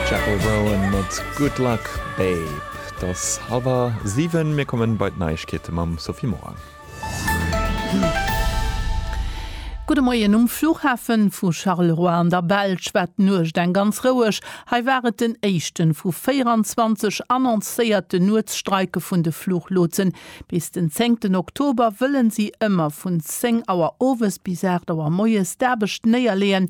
Jethro Brown mat Good Luck Babe. Et ass hallwer siwen, mir kommen bei d'Neiegkeete mam Sophie Morang. Gudde Moien. Um Flughafe vu Charleroi an der Belsch war d'Nuecht eng ganz roueg. Hei war et den éischte vu 24 annoncéierte Nuetsstreike vun de Fluchlotsen. Bis den zéngten Oktober wëlle si ëmmer vun 10 Auer owes bis 8 Auer moies d'Aarbecht néierleeën,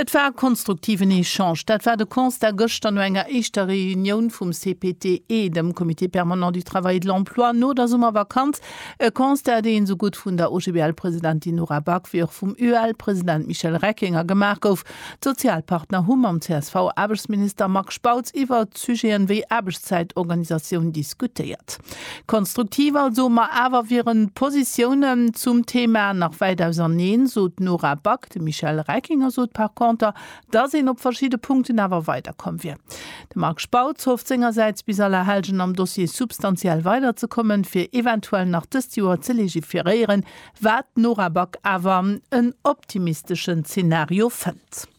Et war e konstruktiven Echange, dat war de Constat gëschter no enger éischter Reunioun vum CPTE, dem Comité permanent du travail et de l'emploi, no der Summervakanz. E Constat, dee esou gutt vun der OGBL-Presidentin Nora Back wéi och vum UEL-President Michel Reckinger gemaach gouf. D'Sozialpartner hu mam CSV-Aarbechtsminister Marc Spautz iwwer. iwwert Sujeten wéi Aarbechtszäitorganisatioun diskutéiert. Konstruktiv also, ma awer wieren d'Positiounen zum Thema nach wäit auserneen, sot d'Nora Back. De Michel Reckinger sot par conter, dass een op verschidde Punkten awer weiderkomm wier. De Marc Spautz hofft sengersäits bis Allerhellgen am Dossier substantiell weiderzekommen, fir eventuell nach dëst Joer ze legiferéieren, wat d'Nora Back awer en optimisteschen Zenario fënnt.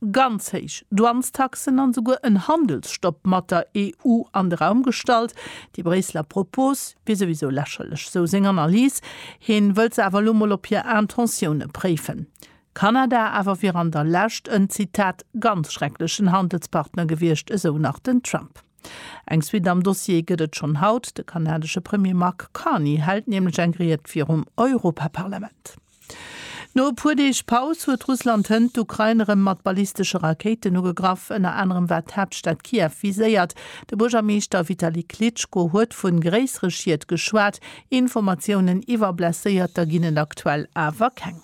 ganz héich Douanestaxen an esouguer en Handelsstopp mat der EU an de Raum gestallt. Déi Bréisseler Propos wier souwisou lächerlech, esou seng Analys. Heen wëllt se awer elo mol op hir Intentiounen préifen. Kanada awer wier an der Lescht en, Zitat, ganz schrecklechen Handelspartner gewiescht, esou nach den Trump. Eng Suite am Dossier gëtt et schonn haut. De kanadesche Premier Mark Carney hält nämlech eng Ried virum Europaparlament. No e puer Deeg Paus huet Russland hënt d'Ukrain erëm mat ballistesche Rakéiten ugegraff. Ënner anerem war d'Haaptstad Kiew viséiert. De Buergermeeschter Vitali Klitschko huet vu gréissere Schied geschwat. Informatiounen iwwer Blesséierter ginn et aktuell awer keng.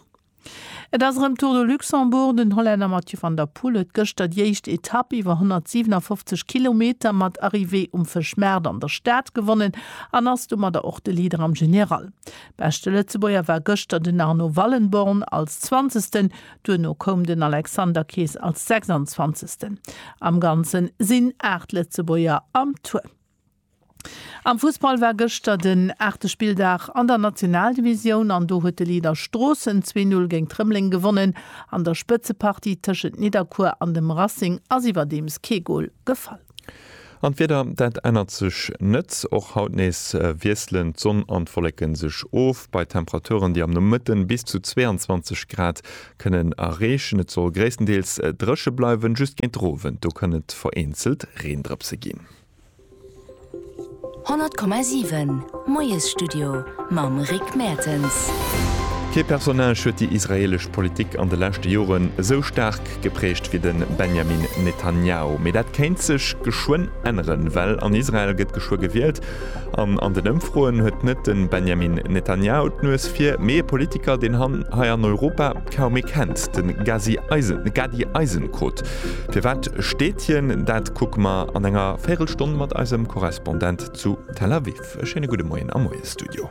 Et ass erëm Tour de Luxembourg. Den Hollänner Mathieu van der Poel huet gëschter déi éischt Etapp iwwer 157 Kilometer mat Arrivée um Fëschmaart an der Stad gewonnen an ass domadder och de Leader am General. Beschte Lëtzebuerger war gëschter den Arno Wallenborn als Zwanzegsten, duerno koum den Alexander Kees als Sechsanzwanzegsten. Am Ganze sinn 8 Lëtzebuerger am Tour. Am Fussball war gëschter den aachte Spilldag an der Nationaldivisioun an do huet de Leader Stroossen zwee Null géint Rëmeleng gewonnen. An der Spëtzepartie tëschent Nidderkuer an dem Racing ass iwwerdeems kee Gol gefall. An d'Wieder, dat ännert sech net. Och haut nees wiesselen d'Sonn an d'Wolleke sech of, bei Temperaturen, déi am Nomëtte bis zu 22 Grad kënnen erreechen. Et soll gréisstendeels dréche bleiwen, just géint de Owend, do kënn et vereenzelt Reendrëpse ginn. 100,7 Moiesstudio mam Rick Mertens. Kee Personnage huet déi israeelesch Politik an de leschte Joren esou staark geprägt wéi de Benjamin Netanjahu. Mee dat kéint sech geschwënn änneren, well an Israel gëtt geschwë gewielt. An an den Ëmfroen huet net de Benjamin Netanjahu d'Nues vir, mee e Politiker, deen hien hei an Europa kaum ee kennt, de Gadi Eisenkot. Firwat steet hien dat? Kucke mer an enger véirel Stonn mat eisem Korrespondent zu Tel Aviv. E schéine gudde Moien am Moiesstudio.